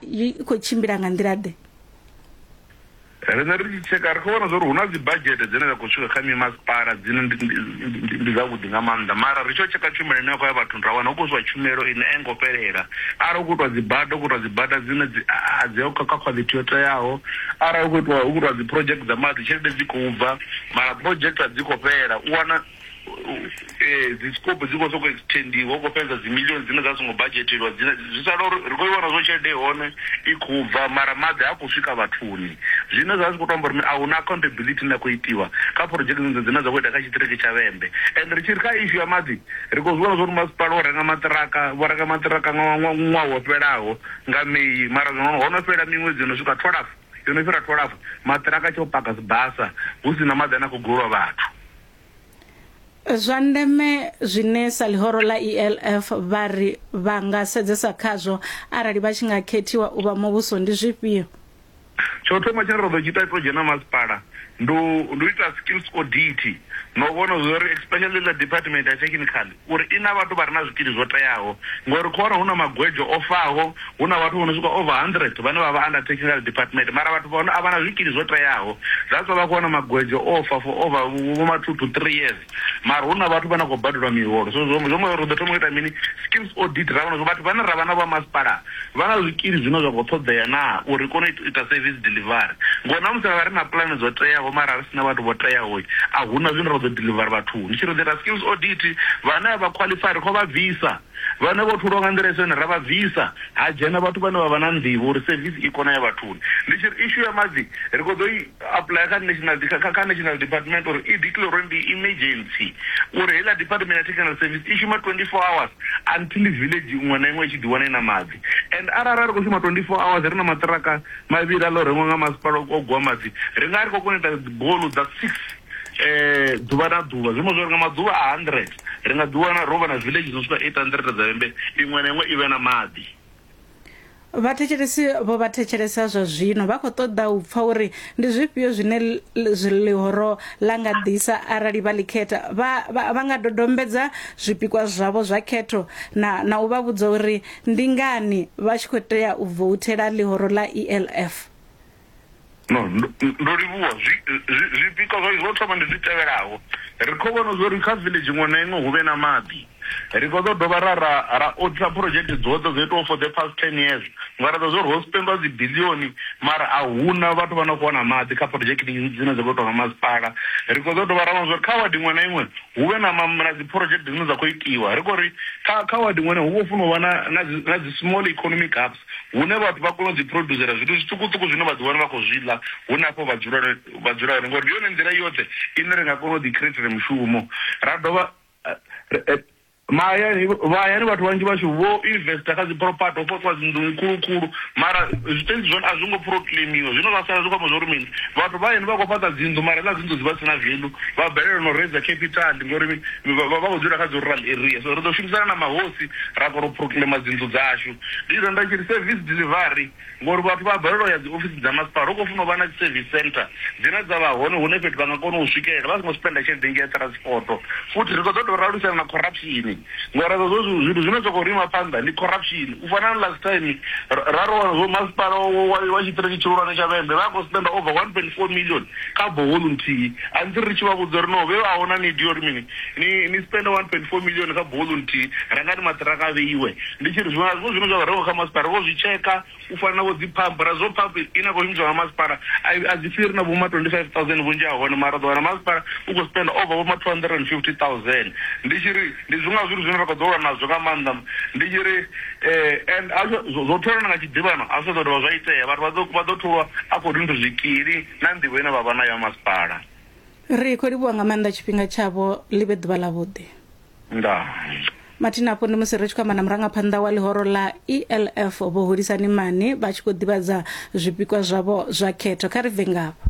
i khou tshimbila nga nḓila ḓe riṋe ri tshi tsheka ri khou vhona zwa uri hu na dzibadzhete dzine dza khou swika kha mimasipala dzine ndi dzavhuḓi nga maanḓa mara ri tshi o tsheka tshumelo ine ya khou ya vhathuni ra wana hu khou swa tshumelo ine a i ngo fhelela arali hu khou itwa dzibada hu khou itwa dzibada dzine a dzi kha kha khwaḽithi yo teaho arali hu khou itwa hu khou itwa dzi project dza maḓi tshelede dzi khou bva mara project a dzi khou fhela u wana eh, dzi scope dzi khou soko extendiwa u khou fhedza dzi million dzine dza songo budgetelwa dzine zwi sala uri ri khou iwana zwo tshelede hone i khou bva mara maḓi ha khou swika vhathuni zwine zwa zwi khou tamba uri a huna accountability na khou itiwa kha project dzi dzine dza khou ita kha tshiṱiriki tsha vhembe and ri tshi ri kha issue ya maḓi ri khou zwiwana zwa uri masipala o renga maṱiraka vho renga maṱiraka nga ṅwaha wo fhelaho nga meyi mara zwino ho no fhela miṅwedzi yo no swika twalafu yo no fhira twalafu maṱiraka tsha u paka sibasa hu si na maḓi ane a khou golwa vhathu zwa ndeme zwine sa ḽihoro ḽa ELF vha ri vha nga sedzesa khazwo arali vha tshi nga khethiwa u vha muvhuso ndi zwifhio? Tsho thoma tshine ra ḓo tshi ita to dzhena masipala ndi u ita skills audit na u vhona zwa uri especially ḽa department ya technical uri i na vhathu vha re na zwikili zwo teaho ngauri khoro hu na magwejo o faho, hu na vhathu vho no swika over 100 vhane vha vha under technical department mara vhathu vha hone a vha na zwikili zwo teaho that's why vha khou wana magwejo o fa for over vho ma two to three years mara hu na vhathu vha na khou badelwa miholo so zwo ri ḓo thoma u ita mini schemes audit ra vhona uri vhathu vhane ra vha na vho ha masipala Vha na zwikili zwine zwa khou ṱhoḓea naa uri ri kone u ita sevisi diḽivari? Ngori na musi ra ri na pulane dzo teaho mara ri si na vhathu vho teaho, a hu na zwine ra ḓo diḽivara vhathuni. Ndi tshi ri there are skills audit, vhane a vha khwaḽifai ri khou vha bvisa, vhane vho tholiwa nga nḓila i si yone ra vha bvisa, ha dzhena vhathu vhane vha vha na nḓivho uri sevisi i kone u ya vhathuni. Ndi tshi ri issue ya maḓi ri khou ḓo i. Apuḽaya kha National kha kha National Department uri i declare uri ndi emergency uri heiḽa Department ya Technical Service i shuma 24 hours until village iṅwe na iṅwe i tshi ḓi wana i na maḓi and arali ra ri khou shuma 24 hours ri na maṱiraka mavhili a ḽo rengwa nga masipala o gwa maḓi ri nga ri khou kona u ita dzibolu dza 6 ḓuvha na ḓuvha zwi amba zwori nga maḓuvha a 100 ri nga ḓi wana ro vha na village dzo swika 800 dza vhembe iṅwe na iṅwe i vhe na maḓi. Vhathetshelesi vho vha thetshelesa zwa zwino vha khou ṱoḓa u pfa uri ndi zwifhio zwine ḽihoro ḽa nga ḓisa arali vha ḽi khetha. Vha, vha, vha nga dodombedza zwipikwa zwavho zwa khetho na, na u vha vhudza uri ndi ngani vha tshi khou tea u vouthela ḽihoro ḽa ELF. No, ndo ndo livhuwa zwi zwi- zwipikwa zwa zwo thoma ndi zwi tevhelaho ri khou vhona zwa uri kha village iṅwe na iṅwe hu vhe na maḓi ri khou ḓo dovha ra ra ra oditha project dzoṱhe dzo itiwaho for the past ten years nga ri ḓo zwa uri ho spendwa dzi bilioni mara a huna vhathu vha no khou wana maḓi kha project dzine dza khou itwa nga masipala ri khou ḓo dovha ra vhona zwa uri kha wadi iṅwe na iṅwe hu vhe na ma- na dzi project dzine dza khou itiwa ri khou ri kha kha wadi iṅwe na iṅwe hu vho funa u vha na na dzi- na dzi small economic hubs hune vhathu vha kona u ḓiphuroduzela zwithu zwiṱukuṱuku zwine vha ḓiwana vha khou zwi ḽa hu na afho vha dzula vha dzula hone ngori ndi yone nḓila yoṱhe ine ri nga kona u ḓikhireithela mushumo ra dovha mahayani mahayani vhathu vhanzhi vhashu vho investor kha dzi property ho fhaṱiwa dzi nḓuni khulu khulu mara zwitentsi zwone a zwi ngo proclaimiwa zwino vha sala zwi khou amba zwori mini vhathu vha hayani vha khou fhaṱa dzinnḓu mara ḽa dzinnḓu dzi vha si na velu vha balelwa no raiser capital ngori vha khou dzula kha dzi rural area so ri ḓo shumisana na mahosi ra kona u proclaima dzinnḓu dzashu Ndi renda tshi ri service delivery ngori vhathu vha a balelwa u ya dzi ofisi dza masipala. Hu khou funa u vha na dzi service centre dzine dza vha hone hune fhethu vha nga kona u swikelela vha songo spender tshelede nnzhi ya transport. Futhi ri khou ṱoḓa u lwisana na corruption ngori hezwo zwo zwithu zwithu zwine zwa khou ri ima phanḓa ndi corruption. U fana na last time ra ri wana zwo masipala wa wa tshiṱiriki tshihulwane tsha Vhembe vha a khou spender over one point four million kha borehole nthihi until ri tshi vha vhudza uri no vhe a hu na need ya uri mini Ni ni spender 1.4 million kha bowl nthihi rengani maṱiraka a vheiwe ndi tshi ri zwiṅwe na zwiṅwe zwine zwa rengiwa kha masipala ri vho zwi tsheka u fana na vho dzi pump ra zwo pump ine a khou shumiswa nga masipala a i- a dzi fhiri na vhoma 25000 vhunzhi ha hone mara ḓo wana masipala u khou spender over vhoma 250000 ndi tshi ri ndi zwiṅwe na zwithu zwine ra khou ḓo lwa nazwo nga maanḓa ndi tshi ri eh, and a zwo- zwo zwo tholana nga tshiḓivhano a zwi ṱoḓa dovha zwa itea vhathu vha ḓo- vha ḓo tholwa a khou ri nthu zwikili na nḓivho ine vha vha nayo ya masipala ri khou livhuwa nga maanḓa tshifhinga tshavho ḽi vhe ḓuvha ḽavhuḓi ndaa mathina afho ndi musi ri tshi khou amba na murangaphanḓa wa ḽihoro ḽa elf vho hulisani mani vha tshi khou ḓivhadza zwipikwa zwavho zwa khetho kha ri bve ngafho